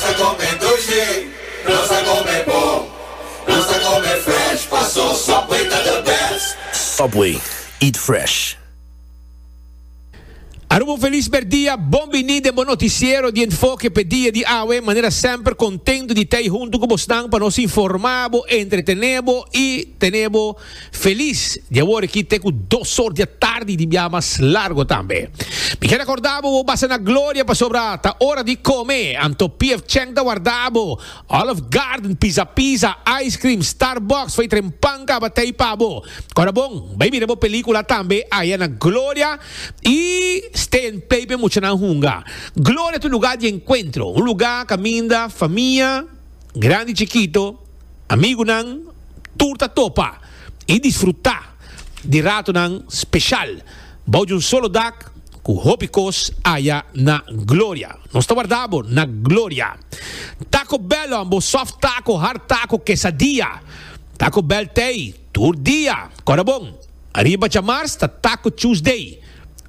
ta come dulce, nos ta come bo, nos ta come fresh, paso Subway ta the best. Subway, eat fresh. Aruba un felis merdia, bon bini den bo noticiero di Enfoke p'e dia di awe. Manera semper contento di t'ey hunto cu bosnan pa nos informa bo, entretene bo y tene bo. Felis di awor aki te ku dos or di atardi di bia mas largo tambe. Mi ker akorda bo bo basa na gloria pasobra ta ora di kome, anto PF Chang ta warda bo, Olive Garden, Pizza Pizza, ice cream, Starbucks, fey tren pan kaba tey pa bo. Kora bon, bai mira bo pelikula tambe aya na gloria i stay and play p'e muchanan hunga. Gloria ta un luga di enkuentro, un luga kaminda famia grandi chikito, Amigunan tur ta topa i disfrutá di ratonan speshal bou di un solo dak ku hopi kos aya na Gloria. Nos ta wardá bo na Gloria. Taco Bell on bo soft taco, hard taco, quesadilla. Taco Bell t'ei tur dia. Kòrda bon! Ariba djamars ta Taco Tuesday.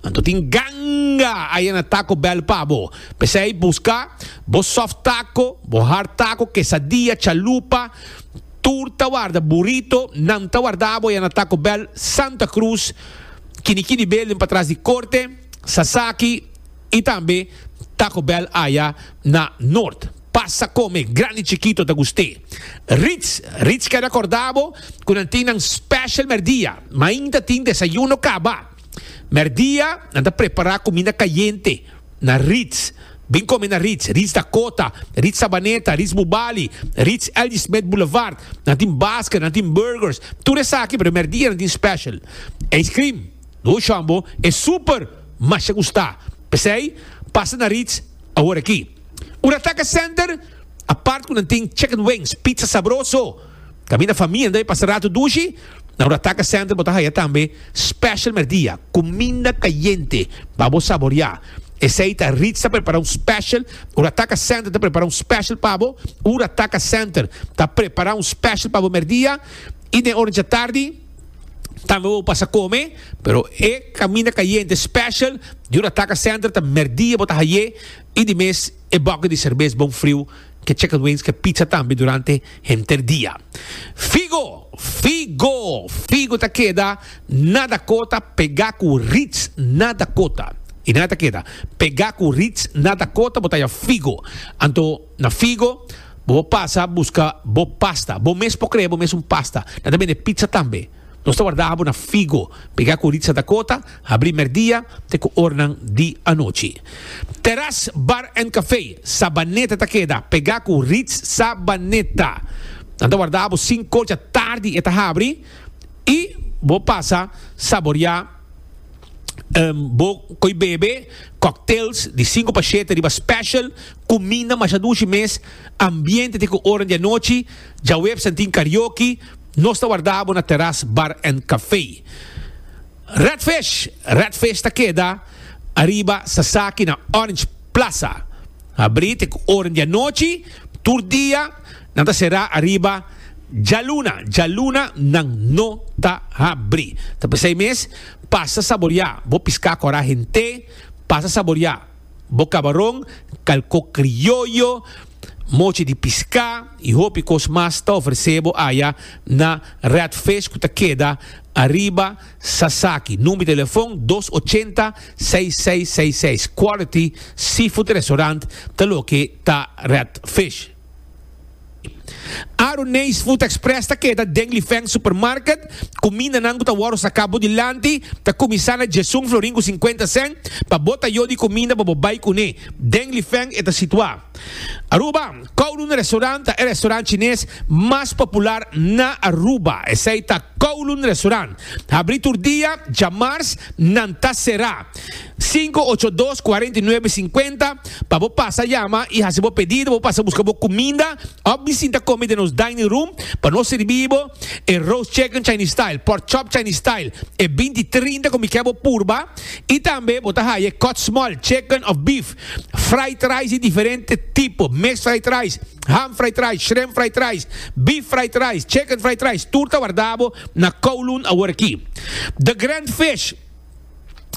Anto tin ganga aya na Taco Bell pa bo. P'esei buska bo soft taco, bo hard taco, quesadilla, chalupa, tur ta warda burrito, nan ta wardabo aya na Taco Bell, Santa Cruz, kini kini building patras di Corte, Sasaki y tambe Taco Bell aya na Noord. Pasa come, grandi chikito ta gust'é. Ritz, Ritz keda korda bo ku nan tin nan special merdia. Mainta tin desayuno kaba. Merdia nan ta prepara kuminda kayente na Ritz. Bin kome na Ritz, Ritz Dakota, Ritz Sabaneta, Ritz Bubali, Ritz L.G. Smith Boulevard. Nan tin basket, nan tin burgers, tur esaki pero merdia nan tin special. Ice cream, no shon bo, e super masha gusta. P'esei pasa na Ritz. Awor aki, ora Taca Center, apart cu nan tin chicken wings, pizza sabroso, caminda famienda y pasa rato dushi, na ora Taca Center bo ta haya tambe special merdia, cuminda cayente pa bo saboria. Esey ta Ritz ta prepara un special, ora Taca Center ta prepara un special pa bo, ora Taca Center ta prepara un special pa bo merdia y den ora dja tardi, tambe bo pasa come pero e caminda cayente special diura ataca center ta merdia bo ta haye y di mes e boke di cerveza bon friu que chicken wings que pizza tambe durante henter dia figo figo figo ta keda na Dakota pega cu Ritz na Dakota y na ta keda pega cu Ritz na Dakota bo ta ya figo anto Na Figo, bo por pasa buska bo pasta. Bo mes por krea bo mes un pasta. Nan ta bende pizza tambe. Nos ta warda abo na Figo. Pega ku Ritza Dakota, habri merdia te ku ornan di anochi. Teras Bar and Cafe, Sabaneta ta keda. Pega ku Ritz Sabaneta. Nan ta warda abo sinkocha tardi e ta habri i bo pasa saborea bo koe bebe cocktails di sinku pa shete riba special. Kuminda masha dushi mes, ambiente te ku oranan di anochi, djaweps nan tin karaoke, nos ta warda bo na Teras Bar and Café. Red Fish, Red Fish ta keda ariba Sasaki na Orange Plaza. Abrí te ku oranan di anochi, tur dia nan ta será ariba djaluna, djaluna nan no ta habrí. Ta p'esei mes, pasa saboriá bo piská kò rahen te, pasa saboriá. Bo kaba ron, kalko krioyo, mochi di piská i hopi kos mas ta ofresé bo aya na Redfish ku ta keda ariba Sasaki. Number di telefon dos ochenta seis seis seis seis. Quality Seafood Restaurant ta loke ta Redfish. Aru Nees Food Express ta keda den Lifeng Supermarket. Kumindanan ku ta wòrdu saká bo dilanti ta kuminsá na djesun florin ku sinkuenta sèn. Pa bo ta yo di kuminda pa bo bai kuné den Lifeng e ta situá. Aruba, Kowloon Restaurant ta e restaurant chines mas popular na Aruba. Esei ta Kowloon Restaurant. Habrí tur dia, dja mars nan ta será. Sinku ocho dos kuarenta i nuebe sinkuenta pa bo pasa yama i hasi bo pedido bo pasa buska bo kuminda òf di sinta komi den nos dining room pa nos sirbi bo e roast chicken chinese style pork chop chinese style e binti trinta komi kè bo purba i tambe bo ta haya e kòt small chicken òf beef fried rice di diferente tipo mes fried rice ham fried rice shrimp fried rice beef fried rice chicken fried rice tur ta warda bo na kowloon awor aki the grand fish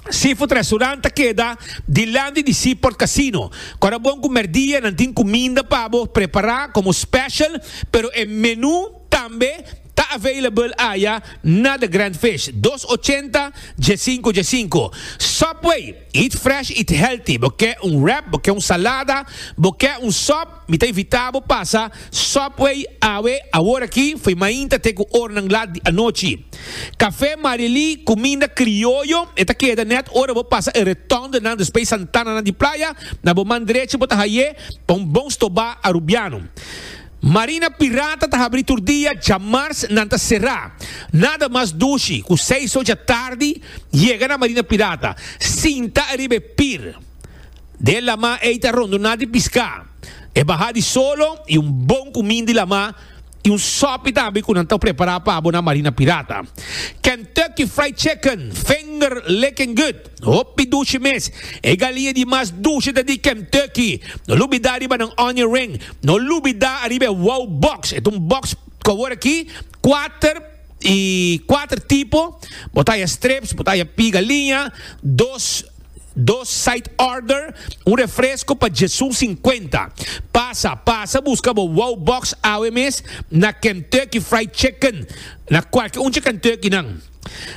Seafood Restaurant ta keda dilant di di Seaport Casino. Kor a bon ku merdia nan tin kuminda pa bo prepará komo special, pero e menú tambe ta available aya na The Grand Fish, dos ochenta dje sinku dje sinku. Subway, Eat fresh, eat healthy. Bo ke un wrap, bo ke un salada, bo ke un sòp, Mi ta invitá bo pasa Subway awe aworakí fo'i mainta te ku ornan lat di anochi. Kafé Marilí, kuminda krioyo, e ta keda nèt ora bo pasa e retòndonan despey santananan di playa, na bo man drechi bo ta hai'é pa un bon stobá arubiano. Marina Pirata ta habrí tur dia, djamars nan ta será. Nada mas dushi ku seis ocha tardi yega na Marina Pirata, sinta ariba e pir. Den lamá ei ta rondoná di piská. E bahá di solo i un bon kumin di lamá i un sòpi tambe ku nan ta prepará pa bo na Marina Pirata. Kentucky Fried Chicken, finger licking good, hopi dushi mes. E galia di mas dushi ta di Kentucky. No lubidá riba nan onion ring. No lubidá ariba e wow box. E ta un box ku awor aki kuater i kuater tipo. Bo ta haya strips, bo ta haya pigaliña, dos. Dos side order, un refresco pa Jesu cincuenta. Pasa, pasa busca bo wow box awe mes na Kentucky Fried Chicken, na cualke unche Kentucky nan.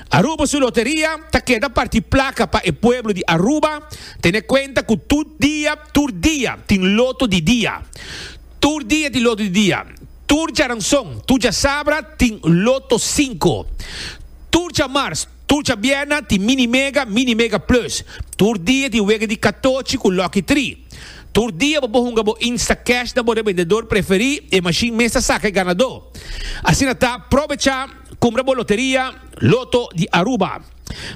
Aruba su loteria ta keda parti placa pa e pueblo di Aruba, tene cuenta cu tur dia, tur dia tin loto di dia. Tur dia tin loto di dia. Tur djaranzon, tur djasabra tin loto cinco. Tur djamars. Tur djabièrna tin Mini Mega, Mini Mega Plus. Tur dia tin wega di katochi ku Lucky Tri. Tur dia bo por hunga bo Instacash na bo rebendedor preferí, e mashin mes ta saka e ganadó. Asina ta, probecha kumbra bo loteria Lotto di Aruba.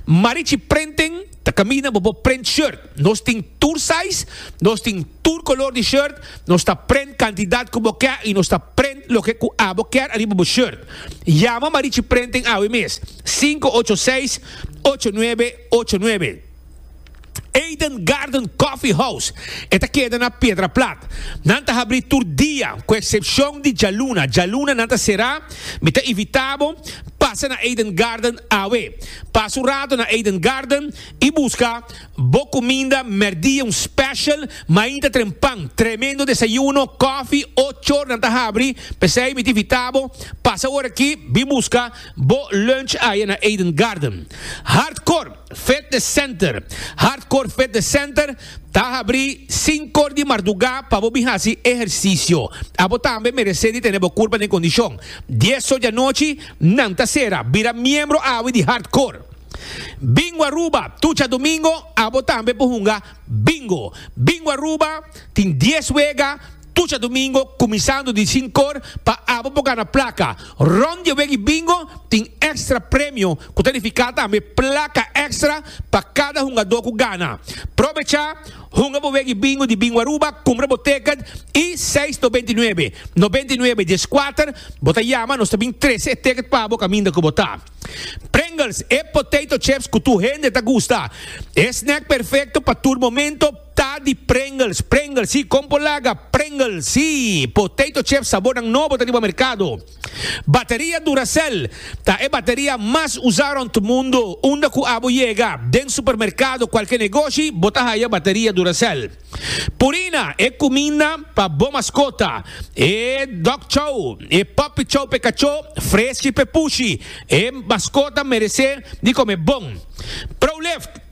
Marichi Printing ta kaminda bo por print shirt. Nos tin tur size, nos tin tur kolor di shirt, nos ta print kantidat ku bo kè i nos ta print loke ku abo kèr ariba bo shirt. Yama Marichi Printing awe mes. 586-8989. Eden Garden Coffee House e ta keda na Piedra Plat. Nan ta habrí tur dia ku eksepshon di djaluna. Djaluna nan ta será. Mi ta invitá bo pasa na Eden Garden awe. Pasa un rato na Eden Garden i buska bo kuminda mèrdia, un special mainta trempan. Tremendo desayuno, kòfi, ochor nan ta habri. P'esei mi ta invitá bo pasa ora aki, bin buska. Bo lunch aye na Eden Garden. Hartcourt Fitness Center Hartcourt Fitness Center ta habri sinkor di mardugá pa bo bin hasi ehersisio. Abo tambe meresé di tene bo kurpa den kondishon. Dies so di anochi nan ta sera. Bira miembro awe di Hartcourt. Bingo Aruba Tucha Domingo abo tambe por hunga Bingo. Bingo Aruba tin dies wega. Tucha domingo kuminsando di sinkor pa abo por gana plaka. Rond di e weki bingo tin èkstra premio ku ta nifiká tambe plaka èkstra pa kada hungadó ku gana. Probecha, hunga bo weki bingo di Bingo Aruba, kumpra bo tèkèt i seis nobenta i nuebe, nobenta i nuebe dies kuater, bo ta yama nos ta bin trese e tèkèt pa bo kaminda ku bo ta. Pringles, e potato chips ku tur hende ta gusta. E snèk perfekto pa tur momento. Ta di Pringles, Pringles si, kon por laga Pringles si. Potato chips sabornan nobo ta riba merkado. Bateria Duracell ta e bateria mas usa rond mundo. Unda ku abo yega, den supermerkado, kualke negoshi, bo ta haya bateria Duracell. Purina, e kuminda pa bo maskota, e dog chow, e puppy chow p'e kachó, freski p'e pushi. E maskota merese di kome bon. Prolift.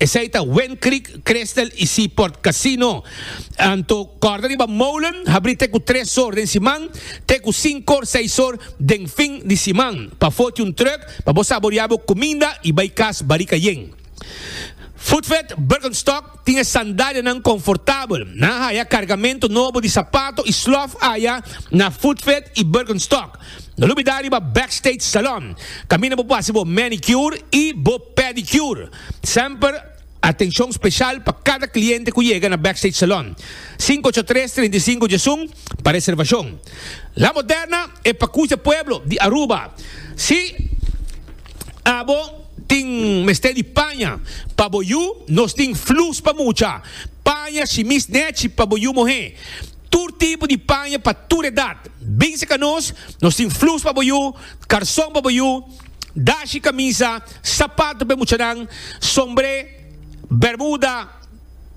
Esei ta Wind Creek, Crystal y Seaport Casino. Anto kòrda riba molen habrí te ku tres or den siman te ku sinku or, seis or den fin di siman. Pa foti un trùk pa bo saboriá bo kuminda y bai kas Barika Yen. Foodfed Birkenstock tin e sandalianan konfortabel. Nan haya kargamentu nobo di sapato y slòf aya na Foodfed y Birkenstock. No lo bida riba Backstage Salon. Kaminda bo por hasi bo manicure y bo. Pedicure, Semper atencion special pa cada cliente cu yega na Backstage Salon, cinco ocho tres, treinta y cinco Jason, pa reservacion. La Moderna, e pacucha pueblo di Aruba. Si abo tin mester di paña pa bo yu, nos tin flus pa mucha, paña, shimis, nechi pa bo yu mohe. Tur tipo di paña pa tur edad. Binse ca nos, nos tin flus pa bo yu, carson pa bo yu. dashi, camisa, sapato p'e muchanan, sombre, bermuda,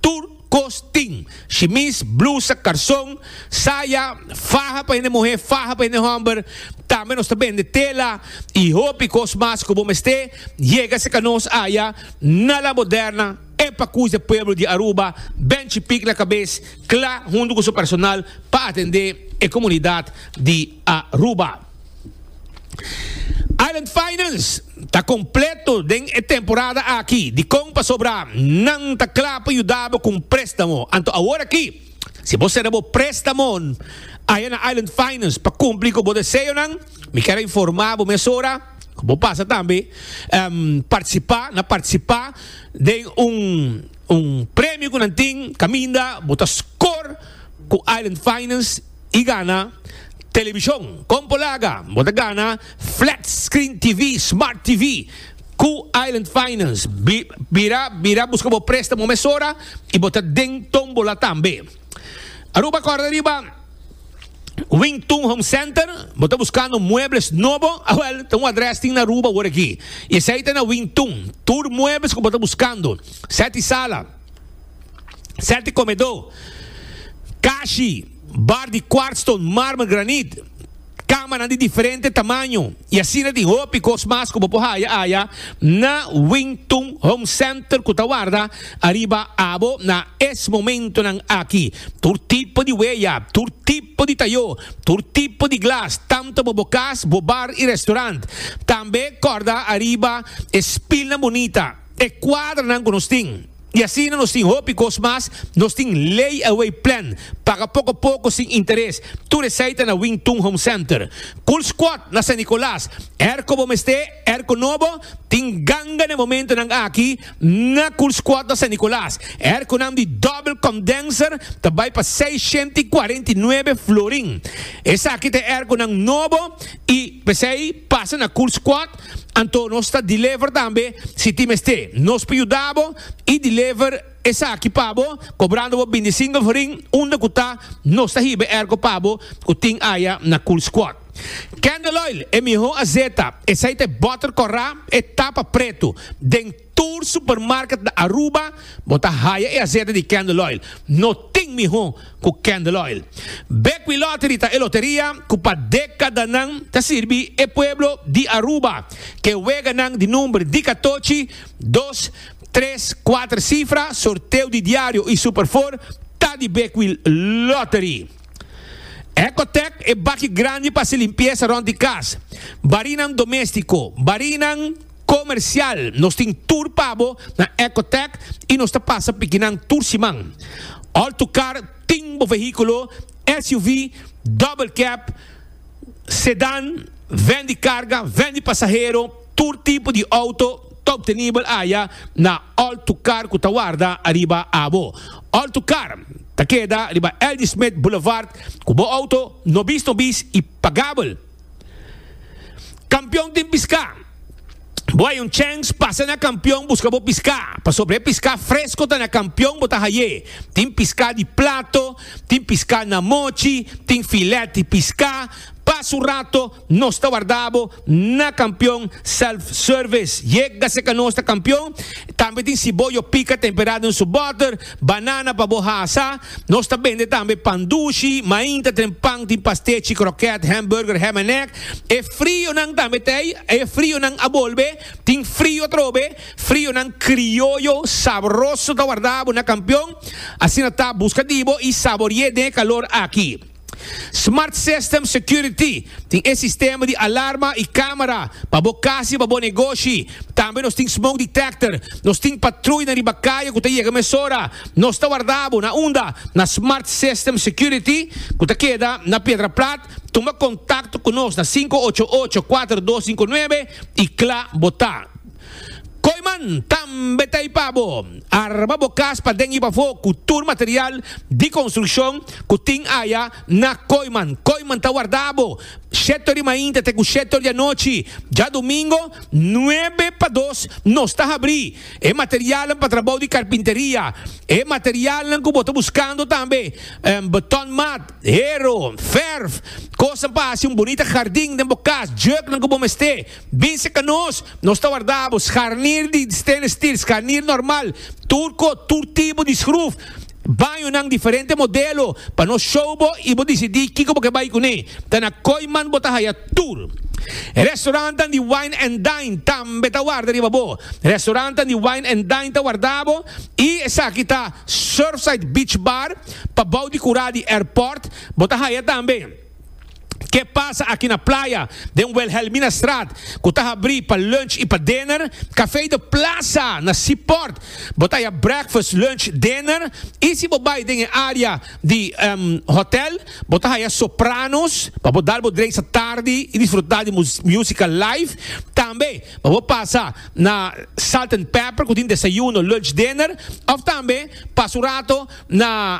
tur cos tin, shimis, blusa, carson, saya, faha pa hende muhe, faha pa hende homber, tambe nos ta bende tela y hopi cos mas cu bo mester yega cerca nos aya na La Moderna, e pacuis d'e pueblo di Aruba ben chipic na cabez cla hunto cu su personal pa atende e comunidad di Aruba. Island Finance ta kompleto den e temporada aki. Dikon pasobra nan ta kla pa yuda bo ku un préstamo? Anto awor aki, si bo sera bo préstamo aya na Island Finance pa kumpli ku bo deseonan, mi ker a informá bo mesora ku bo pasa tambe um partisipá na partisipá den un un premio ku nan tin kaminda bo ta skor ku Island Finance. y gana television. Con por laga bo ta gana flat screen TV, smart TV cu Island Finance. Bira bira busca bo prestamo mesora y bo ta den tombola tambe. Aruba corda riba Wing Tun Home Center, bo ta buscando muebles nobo, awel, ah, ta un adres tin na Aruba wor aki. Y esey ta na Wing Tun, tur muebles cu bo ta buscando, set y sala. Sèt di komedó, kashi, bar di kwartston, mármer, granit, kamanan di diferente tamaño i asina tin hopi kos mas ku bo por haya aya na Wing Tun Home Center ku ta warda ariba abo na es momentonan aki. Tur tipo di weya, tur tipo di tayó, tur tipo di glas, tantu pa bo kas, bo bar i restorant. Tambe kòrda ariba e spilnan bunita. e kuadranan ku nos tin. I asina nos tin hopi kos mas, nos tin lay-away plan, paga poko poko sin interes, tur esei ta na Wing Tun Home Center. Cool Squad na San Nicolas, er ko bo mester, er ko no bo, tin ganga na e momentonan aki na Cool Squad na San Nicolas. Er ko nam di Double Condenser ta bai pa seishenta i kuarenta i nuebe florin. Esaki ta e er konan nobo i p'esei pasa na Cool Squad. Anto nos ta deliver tambe si tin mester. Nos por yuda bo y deliver esaki pa bo cobrando bo bindi single for ring unda cu ta nos ta hiba e ergo pa bo cu tin aya na Cool Squad. Candle Oil e miho azeta, esey ta e butter corra, e tapa preto den. Tur supermarket na Aruba bo ta haya e asete di Candle Oil. No tin miho ku Candle Oil. Bequi Lottery ta e loteria ku pa dekadanan ta sirbi e pueblo di Aruba. Ke weganan di number di katochi, dos, tres, kuater sifra, sorteo di diario i Super Four ta di Bequi Lottery. Ecotec e baki grandi pa hasi limpiesa rond di kas, barinan domestico, barinan. Comercial, Nos tin tur pa bo na Ecotech y nos ta pasa pikinan tur siman. Alto Car tin bo vehiculo, SUV, double cab, sedan, ven di carga, ven di pasahero, tur tipo di auto ta obtenibel aya na Alto Car cu ta warda ariba abo. Alto Car ta keda riba Ldismith Boulevard cu bo auto nobis nobis y pagabel. Kampion tin piská. Bo haya un chèns, pasa na kampion buska bo piská, pasobra e piská fresko ta na kampion bo ta hay'é. Tin piská di plato, tin piská na mochi, tin filèt di piská. Pa su rato nos ta wardá bo na kampion self-service. Yega seka nos ta kampion. Tambe tin siboyo pika temperá den su bòter. Banana pa bo hasa. Nos ta bende tambe pan dushi, mainta, tren pan, tin pastechi, kroket, hamburger, ham en egg. E frionan tambe ta ei. E frionan a bolbe. Tin frio atrobe. Frionan krioyo sabroso ta warda bo na Kampion. Asina ta, buska di bo i sabori'é den e kalor aki. Smart System Security tin e sistema di alarma y camera pa bo cas y pa bo negoshi. Tambe nos tin smoke detector. Nos tin patruy na riba caye cu ta yega mesora. Nos ta warda bo na unda? Na Smart System Security cu ta keda na Piedra Plat. Tuma contacto cu nos na sinku ocho ocho, kuater dos sinku nuebe y cla bo ta. Koyman tambe ta i pa bo arma bo kas paden i pafó ku tur material di konstrukshon ku tin aya na Koyman. Koyman ta warda bo shetor di mainta te ku shetor di anochi. Djadumingo nuebe pa dos nos ta habrí e materialnan pa trabou di karpinteria. E materialnan ku bo ta buskando tambe beton mat, hero, verf, kosnan pa hasi un bunita hardin den bo kas, jèknan ku bo mester. Binse ka nos, nos ta warda bo scharnier di stainless steel, scharnier normal, turco, tur tipo di schruf, bañonan diferente modelo pa nos show bo y bo dicidi kico bo ke bay cune. Ta na Kooiman bo ta haya tur. Restaurantnan di Wine and Dine tambe ta warda riba bo. Restaurantnan di Wine and Dine ta warda bo y esaki ta Surfside Beach Bar pabao di cura di airport, bo ta haya tambe. Ke pasa aki na playa, den Wilhelminastraat, ku ta habrí pa lunch i pa dinner, Café de Plaza na Seaport. Bo ta haya breakfast, lunch, dinner i si bo bai den e área di hòtel, bo ta haya Sopranos pa bo dal bo dreisa tardi i disfrutá di músika live. Tambe pa bo pasa na Salt and Pepper ku tin desayuno, lunch, dinner òf tambe pasa un rato na.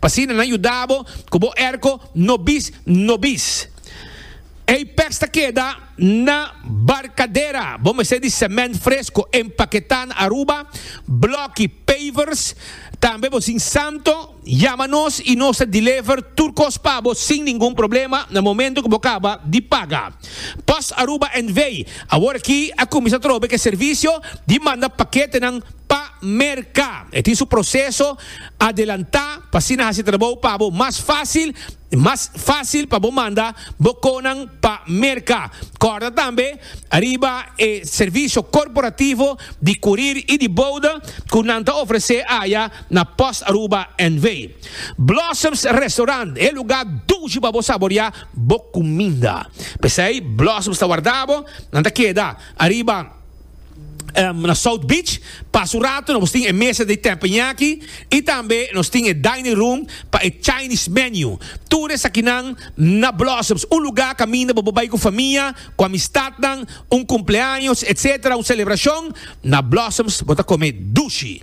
pa asina nan yuda bo ku bo erko no bis no bis. Ei pes ta keda na barkadera, bo mester di semènt fresko, empaketá na Aruba, blòki, pavers, tambe bo sin santo yama nos i nos ta dilever tur kos pa bo sin ningun problema na momentu ku bo kaba di paga. Post Aruba NV. Awor aki a kuminsá trobe ku e servisio di manda paketenan pa merka. E tin su proseso. Adelantá pa asina hasi trabou pa bo mas fásil i mas fásil pa bo manda bo konan pa merka. Kòrda tambe riba e servisio korporativo di kurir i di bouda ku nan ta ofresé aya na Post Aruba NV. Blossoms Restaurant, e lugá dushi pa bo saboriá bo kuminda. P'esei Blossoms ta warda bo, nan ta keda ariba. na South Beach. Pas un rato nos tin e mesa di tepenyaki y tambe nos tin e dining room pa e Chinese menu. Tur esakinan na Blossoms, un lugar caminda bo por bay cu famia, cu amistadnan, un cumpleaños, etc. Un celebracion, na Blossoms bo ta come dushi.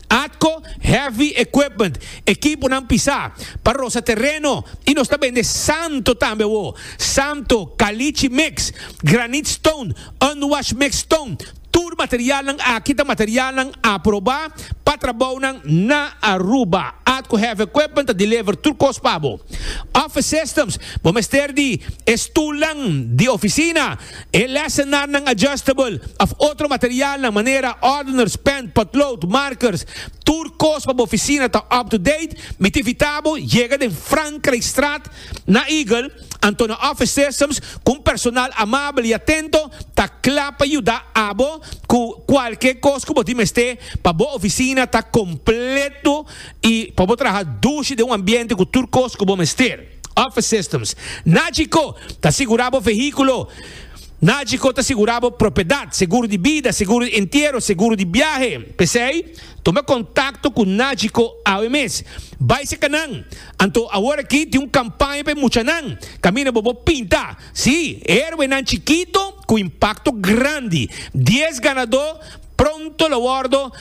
Atco heavy equipment, ekiponan pisá, pa rosa tereno i nos ta bende santo tambe awó, santo, kalichi mix, granite stone, unwashed mixed stone, tur materialnan aki ta materialnan aprobá pa trabounan na Aruba. Atco Heavy Equipment ta deliver tur cos pa bo. Office Systems, bo mester di e stulnan di oficina, E lesenarnan adjustable of otro materialnan manera ordeners, pen, potlood, markers, tur kos pa bo oficina ta up to date, mi ta invita bo yega den Frankrijkstraat na Eagle, anto na office systems cu un personal amabel y atento ta cla pa yuda abo cu cualkier kos cu bo tin mester pa bo oficina ta completo y pa bo traha dushi den un ambiente cu tur kos cu bo mester. Office Systems. Nagico ta sigurá bo vehíkulo. Nagico ta sigurá bo propiedat, seguro di bida, seguro di entiero, seguro di biahe. P'esei, tuma kontakto ku Nagico awe mes. Bai serka nan. Anto awor aki tin un kampaña pa e muchanan. Kaminda bo bo pinta. Sí, herwenan chikito ku impakto grandi. Dies ganadó pronto lo wòrdu.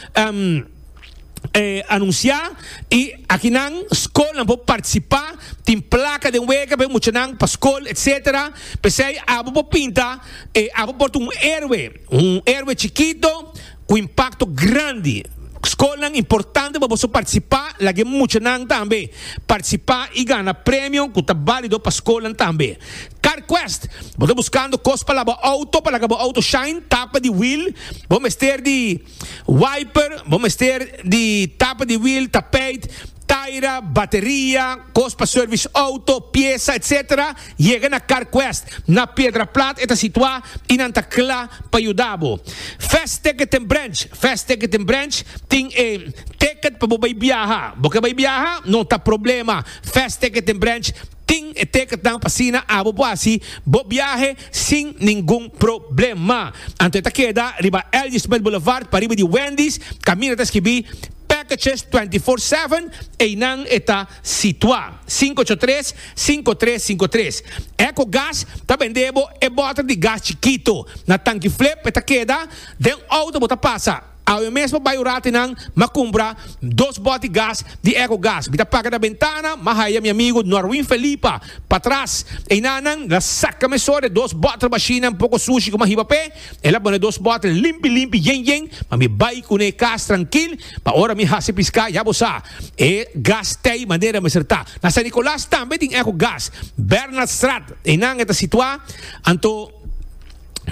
anuncia y aki nan school nan por participa tin placa den wega pa e muchanan pa school etc pesey abo por pinta e abo por ta un heroe un heroe chikito cu impacto grandi school nan importante pa boso participa lague muchanan tambe participa y gana premio cu ta balido pa school nan tambe car quest bo ta buscando cos pa laga bo auto pa laga bo auto shine tapa di wheel bo mester di. Wiper, bo mester di tapa di wiel, tapijt, taira, bateria, kos pa service auto, piesa, etc. Yega na CarQuest na Piedraplat e ta situa y nan ta cla pa yuda bo. Fast Ticket en Branch, Fast Ticket en Branch tin e ticket pa bo bay biaha. Bo ke bay biaha? No ta problema, Fast Ticket en Branch Tin e tekentnan pa asina abo bo hasi bo biahe sin ningun problema. Anto e ta keda riba L.G. Smith Boulevard pariba di Wendy's, kaminda ta skibi Packages 24/7, einan e ta situa. Sinku ocho tres, sinku tres sinku tres. Echo Gas ta bende bo e boter di gas chikito. Na tanki flip e ta keda den outo bo ta pasa. Awe mesmo bay urati nan ma cumpra dos boti gas di eco gas mi ta paga na bentana ma haya mi amigo Norwin Felipa patras eyna nan la saca meso de dos bottle bashinan poco sushi cu ma hiba p'e el a bone dos bottle limpi limpi yen yen ma mi bay cune cas trankil pa ora mi haci pisca ya bo sa e gas tey manera mester ta na San Nicolas tambe tin eco gas Bernaldstraat eynan e ta situa anto.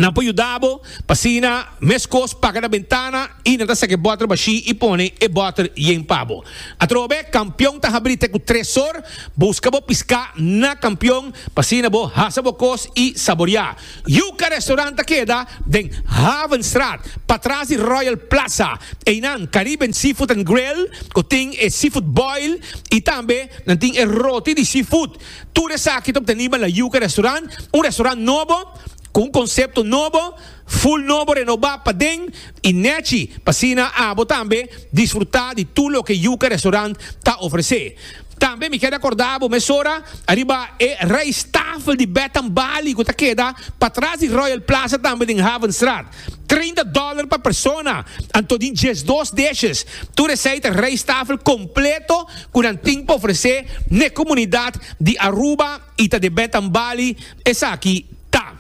Nan por yuda bo pa asina meskos paga na bentana i nan ta saki e bòter bashí i pone e bòter yen pa bo. Atrobe, kampion ta habrí te ku tres sor. Buska bo piská na kampion pa asina bo hasa bo kos i saboriá. Yuka Restaurant ta keda den Havenstraat, patras di Royal Plaza. Einan Caribbean Seafood and Grill, ku tin e seafood boil i tambe nan tin e roti di seafood. Tur esaki ta obteniba na Yuca Restaurant, un restaurant nobo, cu un concepto nobo, full nobo renoba paden y nechi pa asina abo tambe disfruta di tur loke Yuca Restaurant ta ofrece. Tambe mi keda corda abo mesora ariba e rijsttafel di Bed and Bali cu ta keda patras di Royal Plaza tambe den Havenstraat. Treinta dòler pa persona, anto di diesdos dishes. Tur esei ta rijsttafel kompleto ku nan tin pa ofresé n'e komunidat di Aruba i ta debè tambali. Esaki ta.